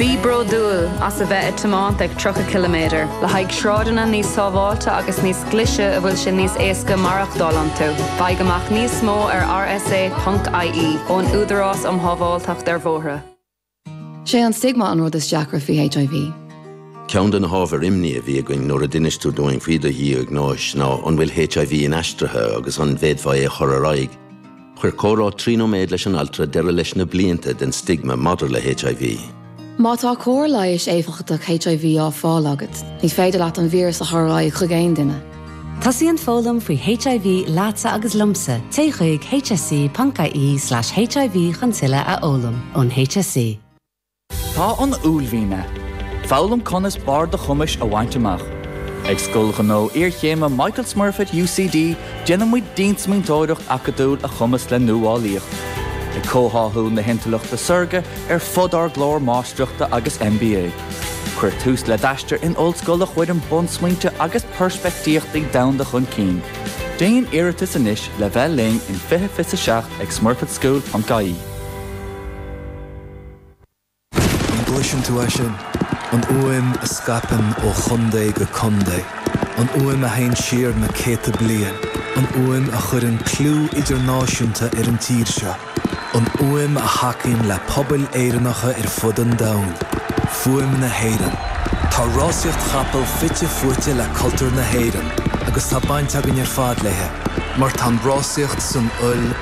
Bí bródúil as a bheith ag tiomáint ag 30 km le haghaidh sráideanna níos sábháilte agus níos glise a bhfuil sé níos éasca maireachtáil iontu. Faigh amach níos mó ar rsa, ie ón Údarás um Shábháilteacht ar Bhóithre. Sé an stigma an rud is deacra faoi HIV. Ceann de na hábhair imní a bhí againn nuair a d'inis tú dúinn faoi do dhiagnóis ná an bhfuil HIV inaistrithe agus an bhféadfá é a chur ar aghaidh. Chuir comhrá trí nóiméad leis an altra deireadh leis na blianta den stigma maidir le HIV. Má tá cóir leighis éifeachtach HIV á fáil agat, ní féidir leat an víreas a chur ar aghaidh chuig aon duine. Tosaíonn foghlaim faoi HIV leatsa agus liomsa, téigh chuig hse.ie/hiv chun tuilleadh a fhoghlaim ón HSE. Tá an uaillmhian ann. Foghlaim conas barr do chumais a bhaint amach. Ag Scoil Ghnó Iarchéime Michael Smurfit UCD déanaimid diansmaointeoireacht acadúil a chumasc le nuálaíocht, ag comhtháthú na hintleachta saorga ar fud ár gclár Máistreachta agus MBA. Cuir tús le d'aistear in ollscoil a chuireann bunsmaointe agus peirspictíochtaí domhanda chun cinn. Déan iarratas anois le bheith linn in 2027 ag smurfitschool.ie. An gcloiseann tú é sin? An fhuaim a scaipeann ó chontae go contae. An fhuaim a théann siar na céadta bliain. An fhuaim a chuireann clú idirnáisiúnta ar an tír seo. An fhuaim a thacaíonn le pobail Éireannacha ar fud an domhain. Fuaim na hÉireann. Tá rásaíocht chapall fite fuaite le cultúr na hÉireann agus tá baint againn ar fad léi mar tá an rásaíocht san fhuil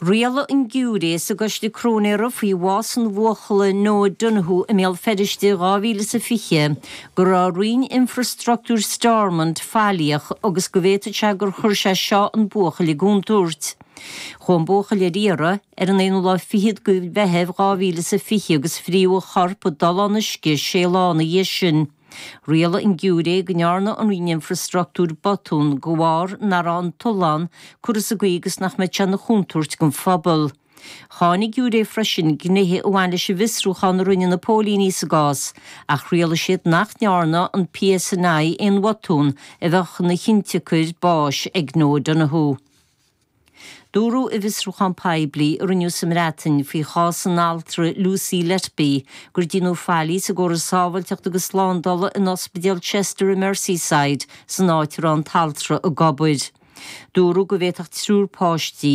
Rialaigh an giúiré sa gcoiste cróinéara faoi bhás an bhuachalla Noah Donohoe i mBéal Feirste in 2020 go raibh Roinn Infreastruchtúir Stormont faillíoch agus go bhféadfadh sé gur chuir sé seo an buachaill i gcontúirt. Chuaigh an buachaill ar iarraidh ar an aonú lá fichead de Mheitheamh 2020 agus frítheadh a chorp i dtollán uisce sé lá ina dhiaidh sin. Rialaigh an giúiré go ndearna an roinn infreastruchtúir botún de bharr nach raibh an tollán curtha sa gcaoi agus nach mbeadh sé ina chontúirt don phobal. Cháin an giúiré freisin gnéithe a bhain leis an bhfiosrúchán a rinne na póilíní sa gcás, ach rialaigh siad nach ndearna an PSNI aon bhotún a bheadh ina chiontsiocair báis ag Noah Donohoe. Dúradh i bhfiosrúchán poiblí a rinneadh sa mBreatain faoi chás an altra Lucy Letby gur deineadh faillí sa gcóras sábháilteachta agus slándála in Ospidéal Chester i Merseyside san áit a raibh an t-altra ag obair. Dúradh go bhféadfadh triúr páistí,